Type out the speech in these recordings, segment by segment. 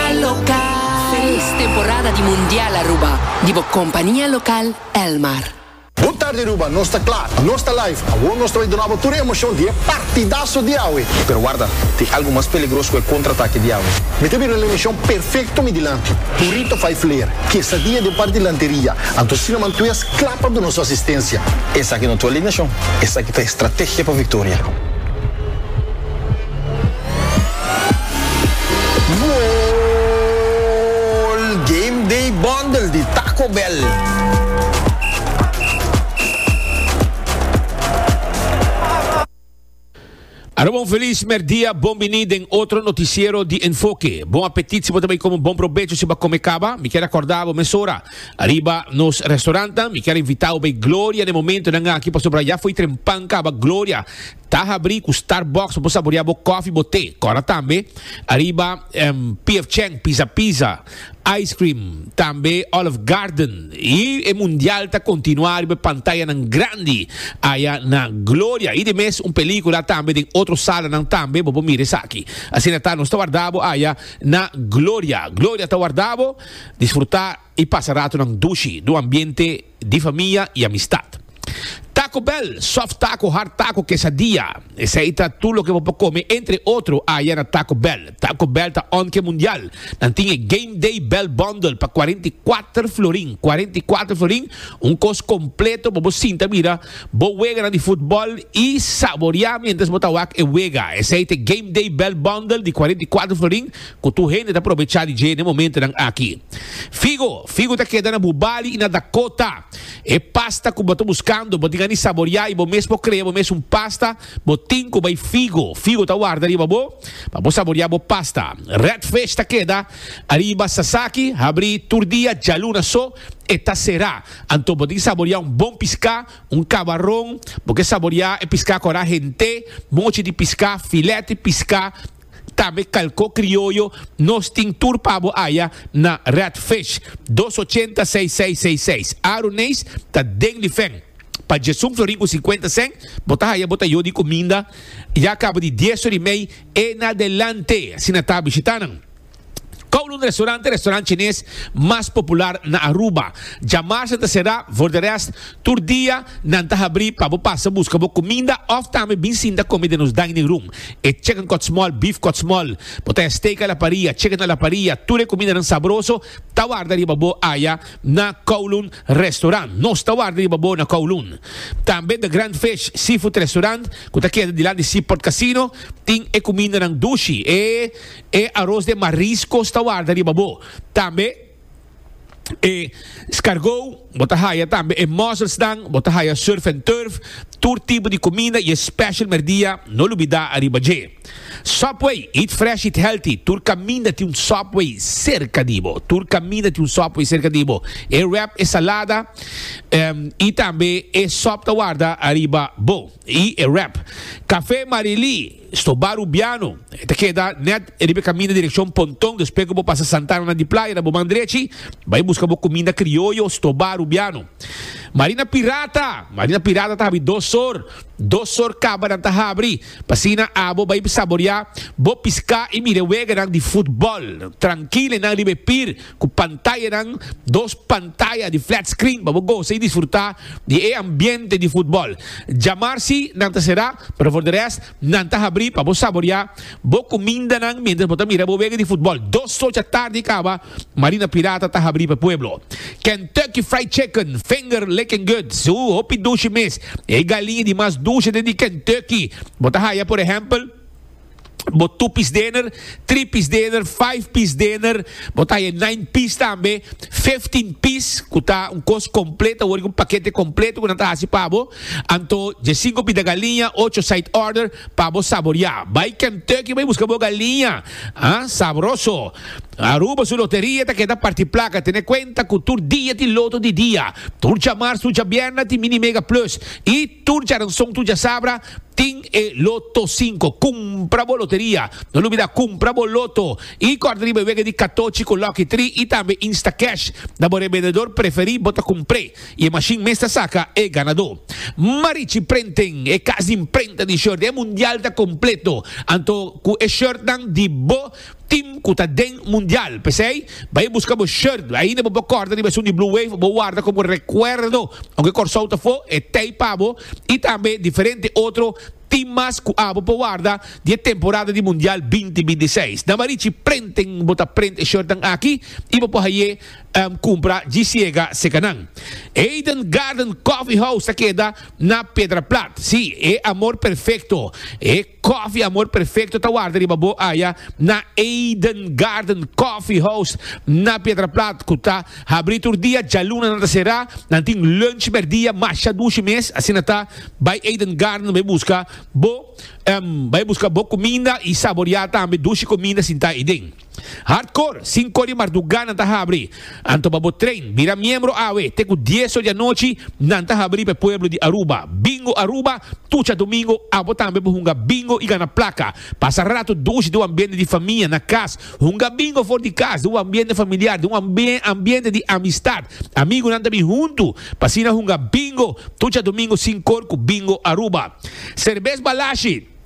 El Local. Felis temporada di Mundial Aruba di bo compania local Elmar. Bon tarde Aruba, nos ta kla, nos ta live. Awor nos ta bai duna bo tur e emocion di e partidaso di awe. Pero warda, tin algo mas peligros ku e kontratake di awe. Mi ta bira un emishon perfekto mi dilanti. Burrito fai fler, kesadia den par di lanteria, anto Sina Mantues kla pa duna su asistensia. Esaki no ta alineashon, esaki ta estrategia pa viktoria. Goal! Game Day Bundle di Taco Bell. Aruba un feliz merdia, bon bini den otro noticiero di Enfoque. Bon apetit si bo ta bay come bon probecho si ba come caba. Mi kier acordabo mesora ariba nos restaurantnan. Mi kier invitabo bay Gloria den momentonan aki pasobra ya fo'i trempan caba Gloria. Ta habri ku Starbucks pa bo saborea bo kofi, bo te. Kora tambe ariba PF Chang, Pizza Pizza, Ice Cream, tambe Olive Garden. I e mundial ta kontinuá riba e pantayanan grandi aya na Gloria. I di mes un pelíkula tambe den otro salanan tambe. Bo por mira esaki. Asina ta, nos ta warda bo aya na Gloria. Gloria ta warda bo. Disfrutá! i pasa ratonan dushi n'un ambiente di famia i amistat. Taco Bell, soft taco, hard taco, quesadilla, esei ta tur loke bo por come entre otro aya na Taco Bell. Taco Bell ta onke mundial. Nan tin e Game Day Bell Bundle pa cuarenta i cuater florin, cuarenta i cuater florin, un cos completo pa bo sinta mira bo weganan di futbol i saboria mientras bo ta wak e wega. Esei ta e Game Day Bell Bundle di cuarenta i cuater florin. Ku tur hende ta probechá di dje na e momentunan aki. Figo, figu ta keda na bu bali i na Dakota. E pasta ku bo ta buskando, bo tin a ni saboriá i bo mes por krea bo mes un pasta, bo tin ku bai figo. Figo ta warda riba bo pa bo saboriá bo pasta. Red Fish ta keda ariba Sasaki, habrí tur dia, djaluna so e ta será. Anto bo tin ki saboriá un bon piská, un kabaron, bo ke saboriá e piská kora hent'é, mochi di piská, filèt di piská, Tambe kalko krioyo nos tin tur pa bo aya na Red Fish dos ochenta seis seis seis seis Aro Neis ta den di fen pa Djesun Florin ku sinkuenta sèn bo ta haya bo ta yo di kuminda ya kaba di dies ori mei e na delante asina ta bishita nan. Kowloon Restaurant e restaurant chines mas popular na Aruba. Djamarsa ta será, for de rest, tur dia nan ta habrí pa bo pasa buska bo kuminda òf tambe bin sinta kome den nos dining room. E chicken kòtsmòl, beef kòtsmòl, bo ta ya steak a la paria, chicken a la paria, tur e kumindanan sabroso ta warda riba bo aya na Kowloon Restaurant. Nos ta warda riba bo na Kowloon. Tambe The Grand Fish Seafood Restaurant, ku ta keda dilanti Seaport Casino, tin e kumindanan dushi, e. E aros den mariscos ta warda riba bo. Tambe e scargou, bo ta haya tambe e musselsnan, bo ta haya surf and turf, tur tipo di cuminda y e special merdia, no lubida ariba dje. Subway, eat fresh, eat healthy, tur caminda tin un Subway cerca di bo, tur caminda tin un Subway cerca di bo. E wrap, e salada y tambe e sop ta warda ariba bo y e wrap. Café Marily. Stobá Rubiano, e ta keda nèt riba e kaminda direkshon Ponton, despues ku bo pasa Santananan di Playa na bo man drechi, bai buska bo kuminda krioyo Stobá Rubiano. Marina Pirata, Marina Pirata ta habri dos sor, dos sor kabanan ta habri, pa asina abo bai saboriá bo piská i mira e weganan di futbòl, trankil enan riba e pir, Ku pantayanan, dos pantaya di flat screen pa bo gosa i disfrutá di e ambiente di futbòl. Djamar si nan ta será, pero for di rest nan ta habrí pa bo saboriá bo kumindanan miéntras bo ta mira bo wega di futbòl. Dos socha tardi kaba, Marina Pirata ta habrí pa e pueblo. Kentucky Fried Chicken, finger licking good, suu, hopi dushi mes. E galiña di mas dushi den di Kentucky bo ta haya, por ehèmpel. Bo two piece dinner, three piece dinner, five piece dinner, bo ta e nine piece tambe, fifteen piece ku ta un kos kompleto, wor un pakete kompleto ku nan ta hasi pa bo. Anto dje sinku pita galiña, ocho side order pa bo saboriá. Bai Kentucky bai buska bo galiña, ha? Sabroso. Aruba su loteria ta keda parti plaka, tene kuenta ku tur dia tin loto di dia. Tur djamarsu, djabierna tin Mini Mega Plus i tur djaranson, tur djasabra Tin e Loto Cinco. Cumpra bo loteria. No lubida cumpra bo Loto y corta riba e wega di Catochi cu Lucky Three y tambe Instacash. Na bo revendedor preferi bo ta cumpre y e machine mes ta saca e ganador. Marichi Printing, e cas di imprenta di shirt, e mundial ta completo. Anto cu e shirtnan di bo Team cu ta den mundial. P'esey, bay busca bo shirt. Ainda bo por corta riba esun di Blue Wave, bo warda como recuerdo. Aunke Corsou ta fo, e t'ey pa bo. Y tambe diferente otro team mas cu abo por warda di e temporada di mundial binti binti i seis. Na Marichi Printing bo ta print e shirtnan aki y bo por haye cumpra dji siega seca nan. Eden Garden Coffee House ta keda na Pedraplat. Sí, e amor perfecto. E. Coffee Amor Perfecto ta warda riba bo aya na Eden Garden Coffee House na Pietraplat cu ta habri tur dia, djaluna nan ta cera, nan tin lunch merdia masha dushi mes, asina ta bay Eden Garden bay busca bo bay busca bo cuminda y saboria tambe dushi cuminda sinta ayi den. Hardcore, Sinko di marduga nan ta habri. Anto pa bo train, bira miembro awe, te ku dies or di anochi nan ta habri pa e pueblo di Aruba. Bingo Aruba, Tucha domingo abo tambe por hunga bingo i gana plaka. Pasa rato dushi den un ambiente di famia, na kas. Hunga bingo for di kas, den un ambiente familiar, den un ambiente di amistad. Amigunan ta bin huntu, pa asina hunga bingo Tucha domingo Sinkor ku Bingo Aruba. Serbes Balashi.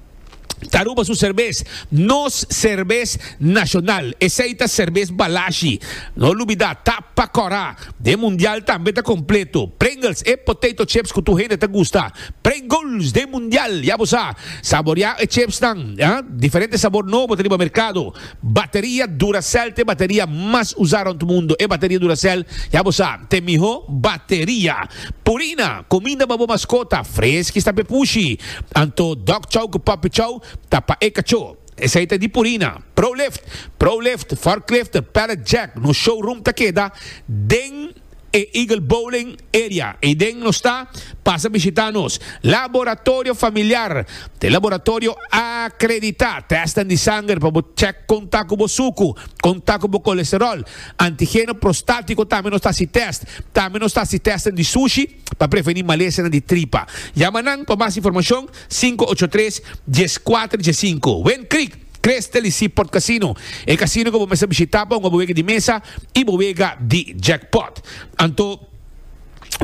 Aruba su serbes, nos serbes nashonal. Esei ta serbes Balashi. No lubidá, ta pa kòrá. Den mundial tambe ta kompleto. Pringles, e potato chips ku tur hende ta gusta. Pringles den mundial, ya bo sa. Saboriá e chipsnan, diferente sabor nobo ta riba merkado. Bateria Duracell ta e bateria mas usá rònt mundu. E bateria Duracell, ya bo sa, ta e mihó bateria. Purina, kuminda pa bo maskota, freski sta pa e pushi. Anto Dog Chow ku Puppy Chow ta pa e kachó. Esei ta di Purina. Prolift, Prolift, Forklift, Pallet Jack, nos showroom ta keda den. e Eagle Bowling Area ei den nos ta, pasa bishita nos Laboratorio Familiar, te laboratorio akreditá, tèsten di sanger pa bo chèk kon ta ku bo suku, kon ta ku bo kolesteròl, antigeno prostátiko tambe nos ta hasi tèst, tambe nos ta hasi tèsten di sushi pa prevení malesanan di tripa. Yama nan pa mas informashon sinku ocho tres, dies kuater, dies sinku. Windcreek. Crystal y Seaport Casino, e casino cu bo mester bishita pa hunga bo wega di mesa y bo wega di jackpot. Anto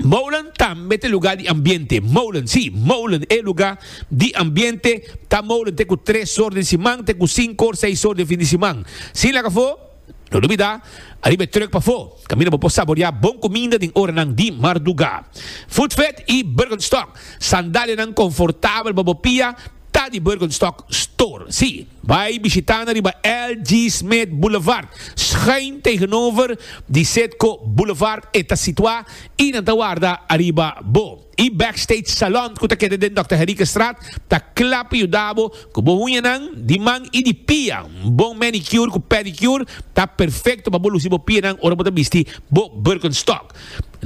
Molen tambe ta lugar di ambiente. Molen, si, Molen e lugar di ambiente ta Molen te cu tres or den siman te cu cinco or seis or den fin di siman. Sin laga fo. No dubidá, ariba e truck pafó, kaminda bo por saboriá bon kuminda den oranan di mardugá. Foodfed i Birkenstock sandalianan konfortabel pa bo pia ta di Birkenstock Store. Sí, bai bishitá nan riba LG Smith Boulevard, schuin tegenover di Citgo Boulevard e ta situá i nan ta warda ariba bo. E Backstage Salon cu ta keda den Dòkter Henriquestraat ta cla pa yuda bo cu bo uñanan di man y di pia. Un bon manicure cu pedicure ta perfecto pa bo luci bo pianan ora bo ta bisti bo Birkenstock.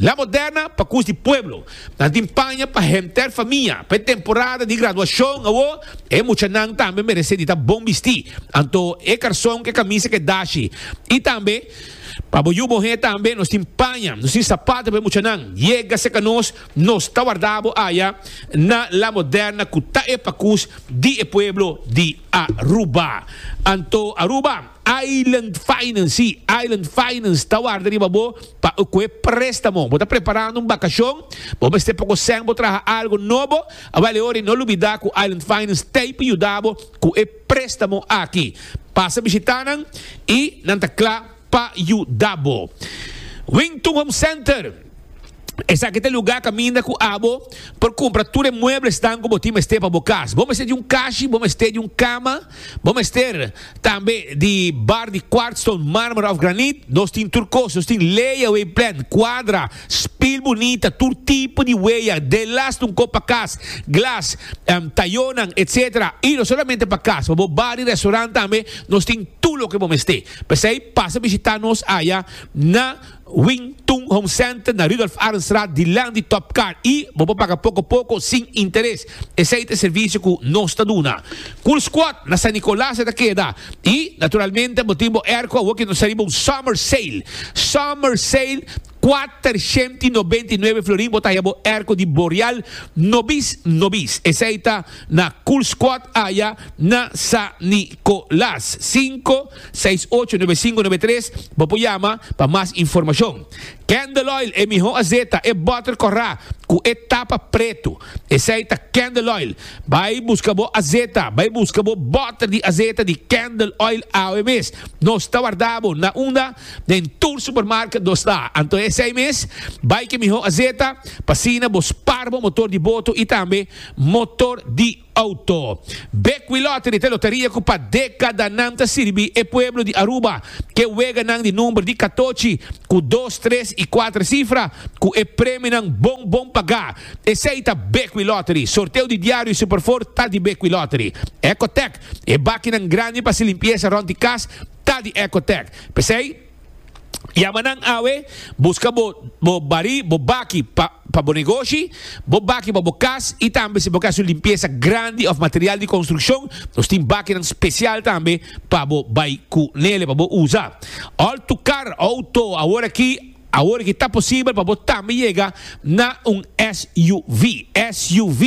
La Moderna pa cus di pueblo. Nan tin paña pa henter famia. Pa e temporada di graduacion awo e muchanan tambe merece di ta bon bisti, anto e carson cu e camisa cu e dashi y tambe. Pa bo yu bo he tambe nos tin paña, nos tin sapato pa e muchanan. Yega serka nos, nos ta warda bo aya na La Moderna ku ta e pakus di e pueblo di Aruba. Anto Aruba Island Finance, si, Island Finance ta warda riba bo pa ku e prestamo. Bo ta preparando un bakashon, bo mester poko sèn bo traha algu nobo, awal e ora i no lubida ku Island Finance ta ei pa yuda bo ku e Préstamo aki. Pasa bishitá nan i nan ta kla pa yuda bo. Wington Home Center, Esaki ta e lugá kaminda ku abo por kumpra tur e mueblesnan ku bo tin mester pa bo kas. Bo mester di un kashi, bo mester di un kama, bo mester tambe di bar di kwartstone, mármara òf granit. Nos tin tur kos. Nos tin layaway plan, kuadra. Spil bunita, tur tipo di weya, delas di un kop pa kas, glas, tayonan, etc. Y no solamente pa kas, pa bo bar y restaurant tambe nos tin tur loke bo mester. P'esey pasa bishita nos aya na Wing Tun Home Center na Rudolf Arendstraat dilanti di Top Car y bo por paga poko poko sin interes. Esei ta e servisio ku nos ta duna. Cool Squad na San Nicolas e ta keda. I, naturalmente, bo tin bo airco awo ku nos ta riba un summer sale. Summer sale, kuater shent i nobenta i nuebe florin bo ta haya bo airco di Boreal nobis nobis. Esei ta na Cool Squad aya na San Nicolas. Sinku, seis, ocho, nuebe, sinku, nuebe, tres, bo por yama pa mas informashon. Candle Oil, e mihó azeta, e butter kòrá ku e tapa pretu. Esei ta candle oil. Bai busca bo azeta. Bai busca bo botter di azeta di candle oil awe mes. Nos ta warda bo na unda den tur supermarket nos ta. Anto esei mes bai ke miho azeta pa asina bo spar bo motor di boto y tambe motor di auto. Bekwee Lottery ta e loteria cu pa decadanan ta sirbi e pueblo di Aruba ke weganan di number di catochi cu dos, tres y cuater cifra cu e premionan bon bon paga. Esei ta Bekwí Lottery. Sorteo di diario y Superford ta di Bekwí Lottery. Ecotec, e bakinan grandi pa hasi limpiesa rond di cas, ta di Ecotec. P'esei, yama nan awe, buska bo bo barí, bo baki pa pa bo negoshi, bo baki pa bo cas y tambe si bo ke hasu limpiesa grandi of material di construccion, nos tin bakinan special tambe pa bo bai cu nele, pa bo usa. All tu car, auto, aworakí, Awor ki ta posibel pa bo tambe yega na un SUV. SUV,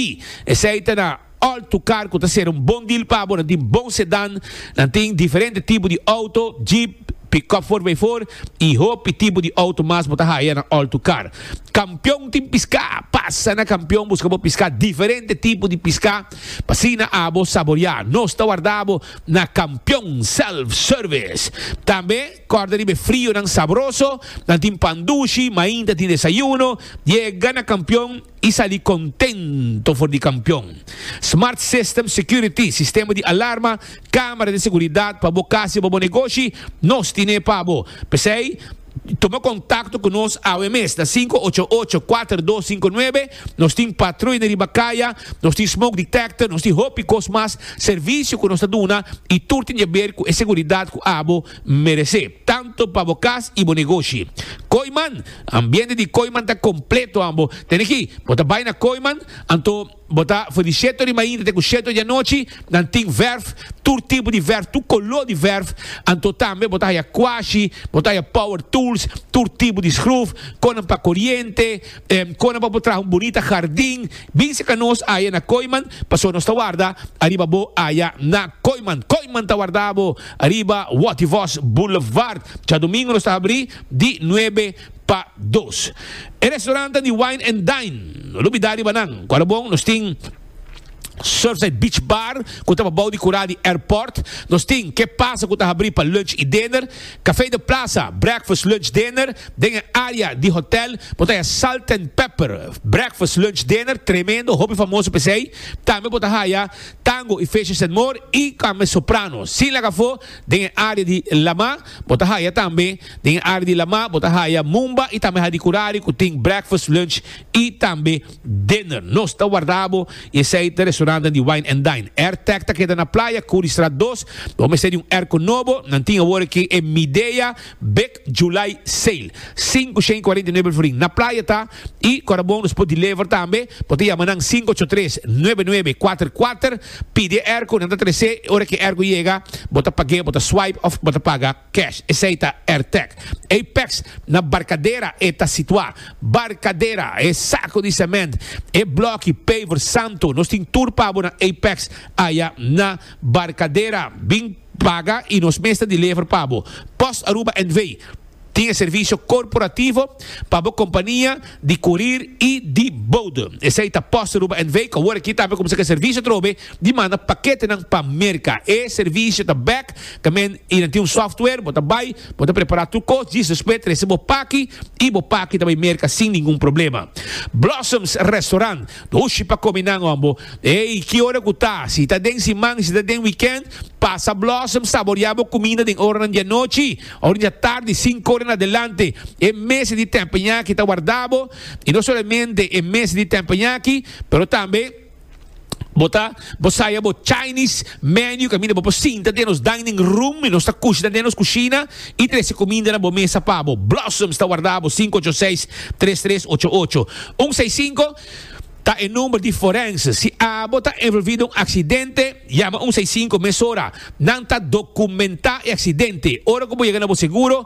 esei ta na alto kar ku ta ser un bon deal pa bo. Nan tin bon sedan, nan tin diferente tipo di auto, jeep, pick-up for by four i hopi tipo di auto mas bo ta haya na alto kar. Kampion tin piska, pasa na Kampion buska bo piska, diferente tipo di piska pa asina abo saboria. Nos ta warda bo na Kampion Self Service. Tambe. Kòrda riba e frionan sabroso, nan tin pan dushi, mainta ta tin desayuno, yega na kampion i sali kontento for di kampion. Smart System Security, sistema di alarma, kámara di seguridat pa bo kas i pa bo negoshi, nos tin'é pa bo. P'esei, tuma kontakto ku nos awe mes na sinku ocho ocho, kuater dos sinku nuebe Nos tin patruyne riba kaya, nos tin smoke detector, nos tin hopi kos mas servisio ku nos ta duna i tur tin jaber ku e seguridat ku abo merese, tantu pa bo kas i bo negoshi. Kooiman, Ambiente di Kooiman ta kompleto an bo tene ki bo ta bai na Kooiman anto bo ta for di setu ori mainta te ku setu ori anochi. Nan tin verf, tur tipo di verf, tur kolo di verf, anto tambe bo ta haya kwashi, bo ta haya power tools, tur tipo di skruf, konan pa koriente, Kona pa bo traha un bunita hardin, bin seka nos aya na Koiman, paso nos ta warda ariba bo aya na Koiman. Koiman ta warda bo ariba Wativos Boulevard. Djadumingu nos ta habri di nuebe pa dos. E restorantan di Wine and Dine, no lo bida riba nan. Kua lo bon, nos tin. Surfside Beach Bar, cu ta pa bao di cura di airport. Nos tin Ke Pasa cu ta habri pa lunch y dinner, Café de Plaza, breakfast, lunch, dinner, den e area di hotel. Bo ta haya Salt and Pepper, breakfast, lunch, dinner, tremendo, hopi famoso pesey. Tambe bo ta haya Tango y Fishes and More y tambe Soprano. Sin laga afo, den e area di Lama, bo ta haya tambe, den e area di Lama, bo ta haya Mumba y tambe Hadi Curari cu tin breakfast, lunch y tambe. Dinner. Nos ta warda bo i esei ta restauranten di Wine and Dine. Airtech ta keda na playa, Curriestraat dos. Bo mester di un airco nobo. Nan tin awor aki e Midea Big July Sale. Sinku shen cuarenta y nuebe el forin. Na playa ta i cu ta bon nos por deliver tambe. Bo ta yama nan sinku ocho tres, nuebe nuebe, kuater kuater. Pidi e airco, nan ta trese. Ora ki e airco yega, bo ta pag'e, bo ta swipe of bo ta paga. Cash, esei ta Airtec. Apex, na Barcadera e ta situa. Barcadera, e saco di cement, e bloki, paver, santo, nos tin tur pa bo na Apex aya na Barcadera. Bin paga y nos mes ta deliver pa bo. Post Aruba NV. tin e servicio corporativo pa bo compania di curir y di bode. Esei ta Post Aruba NV cu awor aki tambe cuminsa cu e servicio atrobe Di manda paketenan pa Merka. E servisio ta bek tamen y nan tin un software. Bo ta bay, bo ta prepara tur cos, djis despues trese bo paki y bo paki ta bay Merka sin ningun problema. Blossoms Restaurant, Dushi pa come nan hombo. Ey, ki ora cu ta, si ta den siman y si ta den weekend, pasa Blossoms saborea bo cuminda den oranan di anochi or dja tardi cinco ora en adelante. E mesa di tempenyaki ta warda bo y no solamente e mesa di tempenyaki pero tambe. Bo ta bo saya bo Chinese menu caminda bo por sinta den nos dining room y nos ta cushna den nos cushina y trece cuminda na bo mesa pa bo. Blossoms ta warda bo cinco ocho seis tres tres ocho ocho un seis cinco ta e number di forense. Si abo ta envolvi den un accidente yama un seis cinco mesora. Nan ta documenta e accidente. Ora cu bo yega na bo seguro.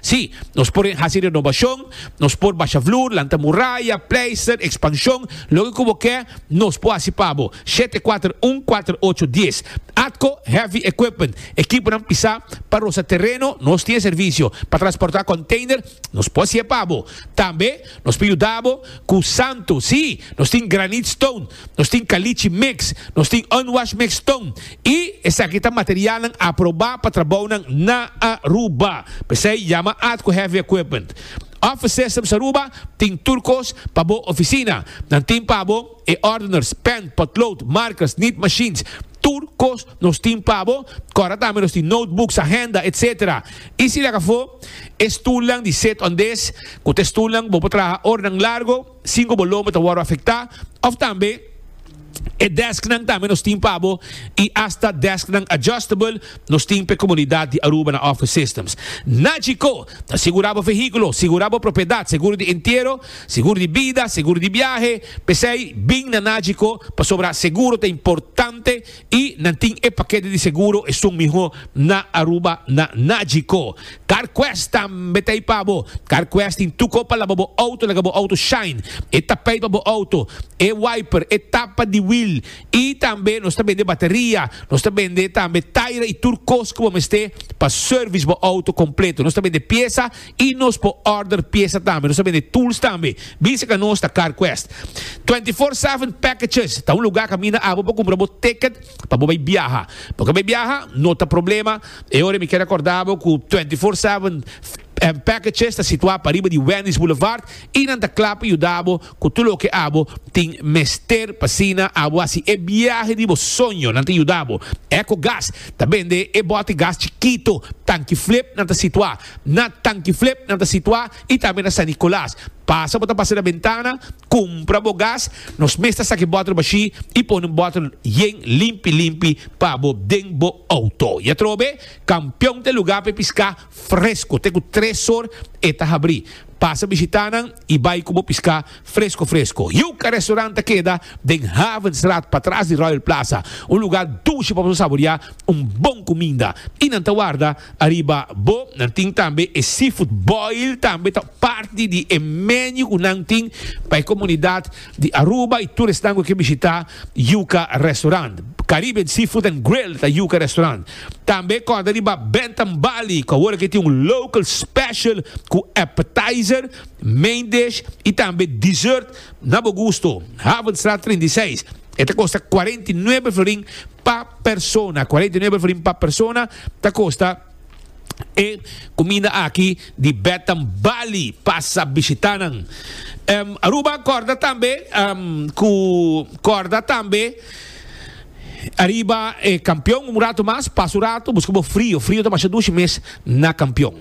Sí, nos por hasi renobashon, nos por basha vloer, lanta muraya, pleister, ekspanshon, loke ku bo ke, nos por hasi pa bo. Shete kuater un kuater ocho dies. Atco Heavy Equipment, ekiponan pisá pa rosa tereno, nos tin e servisio. Pa transportá konteiner, nos por hasié pa bo. Tambe. Nos por yuda bo cu santo. Sí, nos tin granite stone, nos tin caliche mix, nos tin unwashed mix stone y esaki ta materialnan aproba pa trabounan na Aruba. P'esey yama Ad cu Heavy Equipment. Office Systems Aruba tin tur cos pa bo oficina. Nan tin pa bo e ordeners, pen, potlood, markers, nit machines, Tur kos nos tin pa bo, kòrda tambe nos tin notebooks, ahenda, etc. I si lak afó, e stulnan di sit-on-des, ku ta e stulnan ku bo por traha oranan largo sin ku bo lomba ta wòrdu afektá, òf tambe e dèsknan tambe nos tin pa bo i asta dèsknan adjustable nos tin pa e komunidat di Aruba na Office Systems. Nagico ta sigurá bo vehíkulo, sigurá bo propiedat, seguro di entiero, Seguro di bida, seguro di biahe, p'esei bin na Nagico, pasobra seguro ta importante y nan tin e pakete di seguro esun miho na Aruba na Nagico. Carquest tambe ta ei pa bo. Carquest tin tuko pa laba bo auto, laga bo auto shine, e tapijt pa bo auto, e wiper, e tapa di wiel y tambe nos ta bende bateria, nos ta bende tambe taira y tur kos ku bo mester pa service bo auto completo. Nos ta bende piesa. Y nos por order pieza tambe. Nos ta bende tools tambe. Bin seca nos ta CarQuest. Twenty Four Seven Packages ta un lugar caminda abo por cumpra bo ticket pa bo bay biaha. Bo ke bay biaha? No ta problema. E ora mi ke recorda bo cu Twenty Four Seven Packages ta situa pariba di Wendy's Boulevard y nan ta cla pa yuda bo cu tur loke abo tin mester pa asina abo haci e biahe di bo soño. Nan ta yuda bo. Ecogas ta bende e bote gas chikito, tanki flip, nan ta situa. Na Tankiflip nan ta situá i tambe na San Nicolas. Pasa bo ta pasa na bentana, kumpra bo gas. Nos mes ta saki bòtel bashí i pone un bòtel yen limpi limpi pa bo den bo outo. I atrobe, Kampion ta e lugá pa e piská fresko. Te ku tres or e ta habrí. Pasa bishitá nan i bai ku bo piská fresko fresko. Yuca Restaurant ta keda den Havenstraat patras di Royal Plaza, un lugá dushi pa boso saboriá un bon kuminda. I nan ta warda ariba bo. Nan tin tambe e seafood boil tambe ta parti di e menu ku nan tin pa e komunidat. Di Aruba y tur esnan cu ke bishita Yuca Restaurant. Caribbean Seafood and Grill ta Yuca Restaurant. Tambe corda riba Bentham Bali cu awor ake tin un local special cu appetizer, main dish y tambe dessert na bo gusto. Havenstraat treinta i seis. E ta costa cuarenta y nuebe florin pa persona. Cuarenta y nuebe florin pa persona ta costa. E kuminda aki di Betam Bali pasa bishita nan. Aruba korda tambe ku korda tambe ariba e kampion un ratu mas, pasa un ratu buska bo frio, frio ta masha dushi mes na kampion.